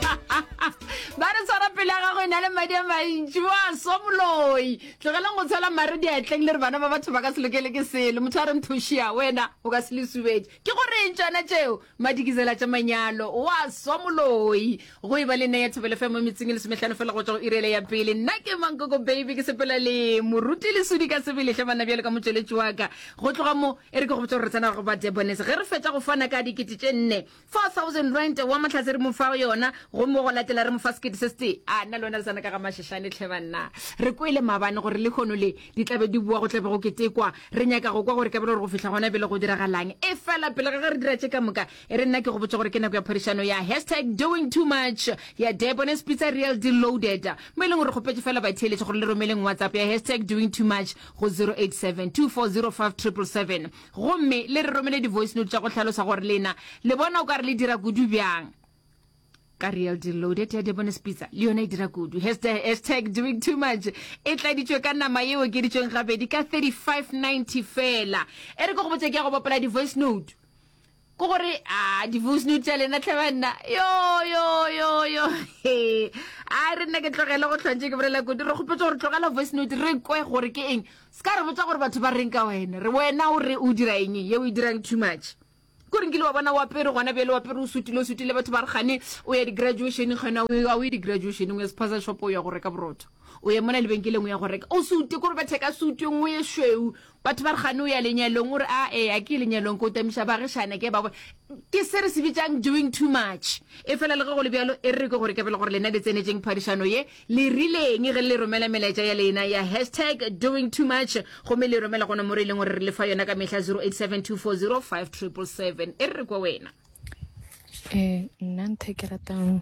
ba re tshwara pele ya gago e na le madi a mantši wa swa moloi tlogeleng go tshwela mare diatleng le re bana ba batho ba ka se lokele ke selo motho a re nthošia wena o ka se le subetše ke gore eng tsona tšeo madikizela tša manyalo wa swa moloi go e ba le nna ya thobele femo metseng e lesometlhano fela go tswa go irele ya pele nna ke mankoko baby ke sepela le moruti le sudi ka sebeletlhe bana bjale ka motšweletši wa ka go tloga mo e re ke go botsa gore re tsena go ba debonese ge re fetsa go fana ka dikete tše nne 4000 rand wa motlhase re mo fa yona gomme wa go latela re mo fa sekete se sete a nna le wena le sana ka ga mašešane tlhe banna re kwele mabane gore le kgono le di tlabe di bua go tlabe go ketekwa re nyaka go kwa gore ka bele gore go fihla gona bele go diragalang e fela pele ga ge re dira tše ka moka e re nna ke go botsa gore ke nako ya phadišano ya hashtag doing too much ya debones pizza real deloaded mo e leng gore kgopetse fela batheeletše gore le romeleng whatsapp ya hashtag doing too much go 087 2405 777 Gomme le re romele di-voice note tša go hlalosa gore lena le bona o ka re le dira kudu bjang. Ka real deal loaded ya Debonis Pizza le yona e dira kudu. Hashtag, hashtag doing too much e tladitšwe ka nama ye okeditšweng gabedi ka 35.90 fela. E re ke go botša ke ya go bapala di-voice note. ko gore a di-voice note tša lena tlhe banna yo yo yo yo a re nna ke tlogele go tlhwantse ke bolela kodi re kgopetse gore tlogela voice note re kwe gore ke eng se ka re botsa gore batho ba reng ka wena re wena o re o dira eng ye o e dirang too much ko renkile wa bona wapere gona bjale wapere o sutile o sutile batho ba re gane o ya di-graduationeng gona a o ye di-graduationeng o ya sephaza shop o ya go reka borotho o ye mona lebenkeleng o ya go reka o sute kore batheka suteng o ye shweu Batho ba re gane o ya lenyalong o re a e a ke lenyalong ko tamiša ba gešane ke ba go ke se re se bitsang doing too much e fela le ge go le bjalo e re ke gore ke bele gore lena le tsenetseng phadišano ye le rileng ge le romela melaetša ya lena ya hashtag doing too much gomme le romela gona more e leng gore re le fa yona ka mehla 0872405777 e re re kwa wena ee nna ntho e ke ratang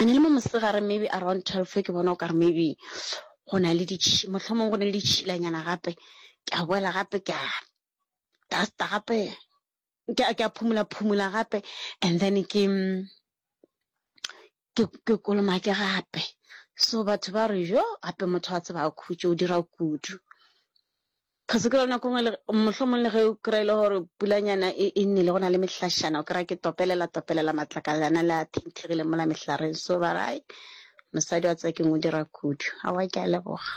e ne le mo mosegare maybe around twelve ke bona o ka re maybe go na le motlho mongwe go ne le ditšhilanyana gape ke a boela gape ke a dusta gape ke a ke a phumula phumula gape and then ke ke ke kolomake gape so batho ba re jo gape motho wa tseba a khutše o dira kudu Ga se ke lona kongwe le, mohlomong le ge o kry-a e le gore pulanyana e, e nele, go na le mehlašana, o kry-a ke topelela, topelela matlakalana le a thengthegileng mola mehlareng, so ba re, hai, mosadi wa tseba keng o dira kudu. Aowa, ke a leboga.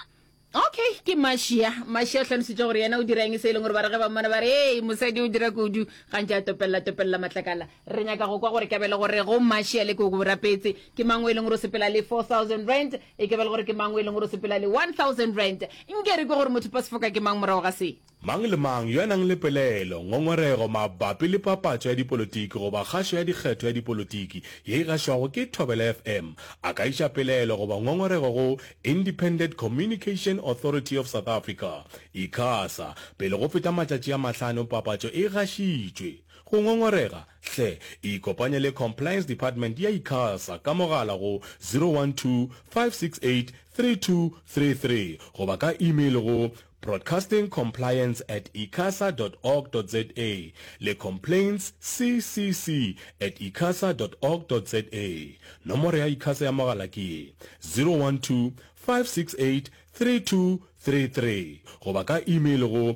Okay, ke Mashia. Mashia o hlalošitše gore yena o dira eng se e leng gore ba re ge ba mmona ba re, Hei, mosadi o dira kudu, gantši a topelela, topelela matlakala. Re nyaka go kwa gore ka be le gore go Mashia le ke o go rapetse, ke mang o e leng gore o sepela le four thousand rand, E ke ba le gore ke mang o e leng gore o sepela le 1000 rand? Nke re kwe gore motho pasifoka ke mang morago ga se? Mang le mang yo a nang le pelaelo, ngongorego mabapi le papatšo ya dipolotiki goba kgašo ya dikgetho ya dipolotiki ye e gašwago ke Thobela FM a ka iša pelaelo goba ngongorego go Independent Communication Authority of South Africa, Icasa, pele go feta matšatši a mahlano papatšo e gašitšwe. Go ngongorega Hle ikopanye le Compliance Department ya Icasa ka mogala go 012-568-3233 goba ka email go broadcastingcompliance at icasa dot org dot za le complaintsccc at icasa dot org dot za. Nomoro ya Icasa ya mogala ke ye, 012-568-3233 goba ka email go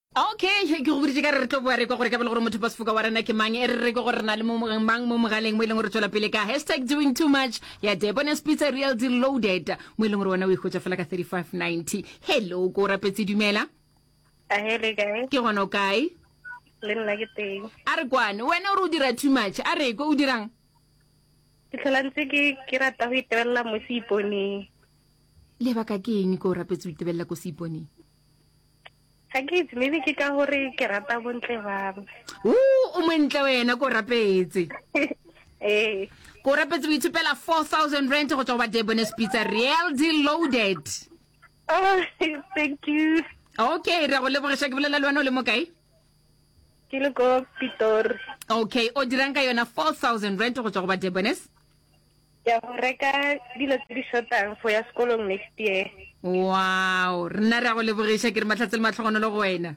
Okay, ke go boditše ka re re tlo boa re kwa gore ka bele gore motho pasifoka wa rena ke mang e re re ke gore re na le mang mo mogaleng mo e leng gore tswela pele ka hashtag doing too much ya debones pizza real di loaded mo e leng gore wena o ikgotsa fela ka 3590 hello ko rapetse dumela ke gona o kae le nna ke teng a re kwane wena o re o dira too much a re ko o dirang ke tlhola ntse ke rata go itebelela mo seiponeng lebaka ke eng ko o rapetse o itebelela ko seiponeng ga ke itse maybe ke ka gore ke rata bontle babo o o montle wena ko rapetse ee ko rapetse o ithopela four thousand rand go tswa go ba debones pizza real deal loaded oh thank you okay re go lebogiša ke bolela le wena o le mo kae ke le ko pitori okay o dirang ka yona four thousand rand go tswa go ba debones Ke ya go reka dilo tse di shotang for ya sekolong next year. Wow, rena re a go lebogiša ke re matlhatse le matlhogonolo go wena.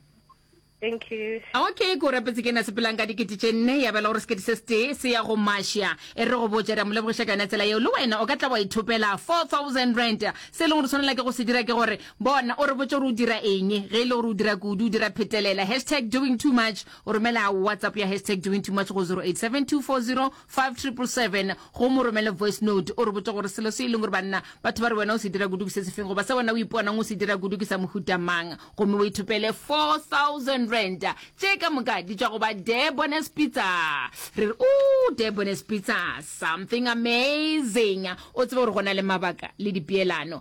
Thank you. Okay, ko rapetse ke na sepelang ka dikete tše nne ya bela gore sekete se setee se ya go mašia e re go botša re a mo lebogiša ka yona tsela yeo le wena o ka tla wa ithopela 4000 rand se e leng gore tshwanela ke go se dira ke gore bona o re botse gore o dira eng ge e le gore o dira kudu o dira phetelela hashtag doing too much o romela whatsapp ya hashtag doing too much go 087240 5777 gomme o romele voice note o re botše gore selo se e leng gore banna batho ba re wena o se dira kudu ke se sefeng goba se wena o iponang o se dira kudu ke sa mohuta mang gomme o ithopele 4000 rand tše ka moka di tšwa go ba Debones Pizza re re o Debones Pizza something amazing o tsebe gore go na le mabaka le dipeelano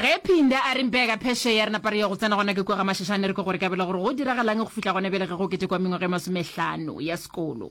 ge phinde a re mpeka pheshe ya re napa re ya go tsena gona ke kwega mašešane re ke gore ka bele gore go diragalang go fitlha gona bele ge go kete kwa mengwaga e masomehlano ya sekolo